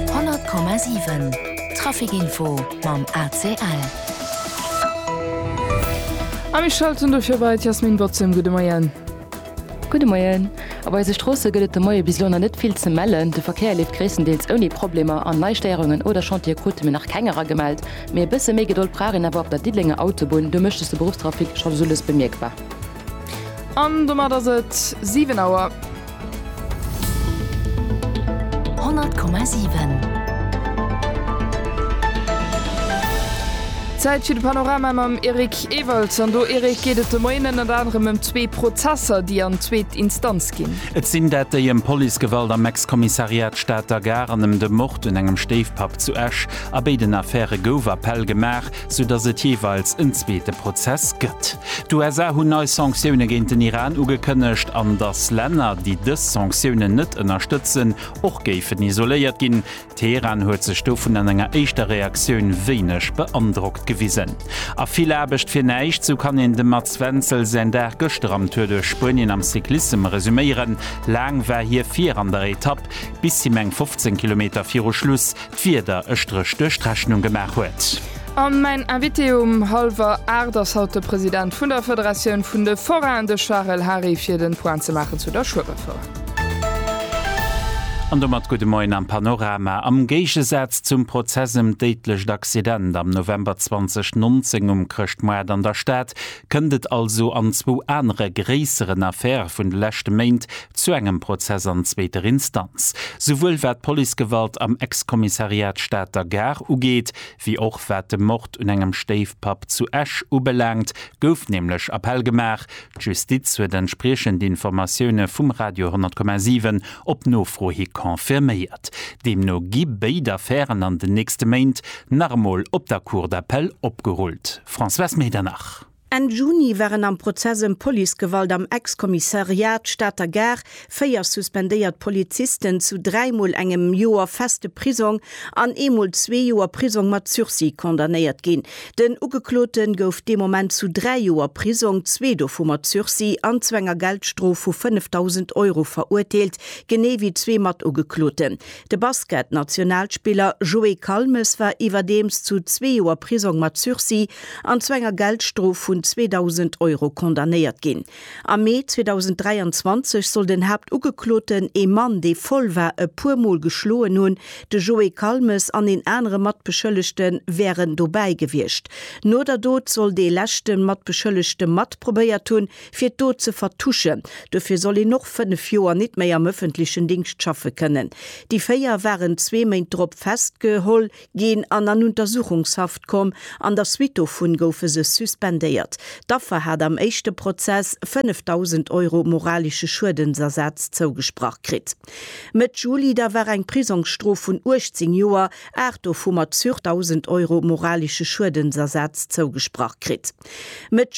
100,7 Trafic Info mam ACL. A mir schalten dofir bei d'Jasmine Bozem. Gudde Moien. Gudde Moien. Op eise Stroosse gëtt et de Moie bis elo nach net vill ze mellen. De Verkéier leeft gréisstendeels ouni Problemer an nei Stéierungen oder Chantiere krute mir nach keng eragemellt. Mee e bësse méi Gedold brauch een awer op der Diddelenger Autobunn, do mécht sech de Beruffstrafic scho soulues bemierkbar. An domat ass et 7 Auer. 100,7. Zäit fir de Panorama mam Eric Ewald. An do, Eric, geet et de Moien ënnert anerem ëm zwee Prozesser, déi an zweet Instanz ginn. Et sinn dat déi ëm Policegewalt am Ex-Kommissariat Stater Gare an ëm de Mord un engem Stéifpapp zu Esch. A béiden Affäre gouf Appell gemaach. sou datt et jeeweils en zweete Prozess gëtt. D'USA hunn nei Sanktioune géint den Iran ugekënnegt, an datt Länner, déi dës Sanktiounen net ënnerstëtzen, och géifen isoléiert ginn. Teheran huet sech dovun an enger éischter Reaktioun wéineg beandrockt gewisen. A vill Aarbecht fir näischt, sou kann een dem Mats Wenzel säin Dag gëschter am Tour duerch Spuenien am Cyclissem resuméieren. Laang war hie vir an der Etapp, bis him eng 15 Kilometer viru Schluss d'Wieder e Stréch duerch d'Rechnung gemaach huet. A mäin Invité um hallwer 8 ass haut de President vun der Federatioun vun de Forainen, de Charel Hary, fir den Point ze maachen zu der Schueberfoire. An domat gudde Moien am Panorama. Am Géigesaz zum Prozess ëm d'déidlecht Accident am November 2019 um Chrëschtmoart an der Stad Kënnt et also an zwou anere gréisseren Affäre vun de leschte Méint zu engem Prozess an zweeter Instanz, souwuel wat d'Policegewalt am Ex-Kommissariat Stater Gare ugeet, wéi och wat de Mord un engem Stéifpapp zu Esch ubelaangt, gouf nämlech Appell gemaach. D'Justiz huet entspriechend Informatioune vum Radio 10,7 op Nofro hi confirméiert. Deemno gi béid Affären an den nächste Méint nach emol op der Cour d'appel opgerullt. Françoise Medernach. Enn Juni waren am Prozess ëm Policegewalt am Ex-Kommissariat Stater Gare véier suspendéiert Polizisten zu dräi Mol engem Joer feste Prisong an ee Mol zwee Joer Prisong mat Sursis condamnéiert ginn. Den Ugeklote gouf dee Moment zu dräi Joer Prisong, zwee dovu mat Sursis, an zu enger Geldstrof vu 5.000 Euro verurteelt, genee wéi zwee Matugekloten. De Basket-Nationalspiller Joé Calmes war iwwerdeems zu zwee Joer Prisong mat Sursis an zu enger Geldstrof vun 2.000 Euro condamnéiert ginn. Am Mee 2023 soll den Haaptugekloten, ee Mann, dee voll war, e puer Mol geschloen hunn. De Joé Calmes an een anere Matbeschëllegte wären dobäi gewiescht. No der Dot soll dee leschte Matbeschëllegte mat probéiert hunn, fir d'Dot ze vertuschen. Dofir soll een och fënnef Joer nit méi am ëffentlechen Dingscht schaffe kënnen. Déi véier waren zwee Méint drop festgeholl ginn an an Untersuchungshaft komm. An der Suite dovun goufe se suspendéiert. D'Affer hat am éischte Prozess 5.000 Euro moralesche Schuedensersaz zougesprach kritt. Mëtt Juli da war eng Prisongsstrof vun 18 Joer, aacht dovu mat sur 1.000 Euro moralesche Schuedensersaz zougesprach kritt. Mëtt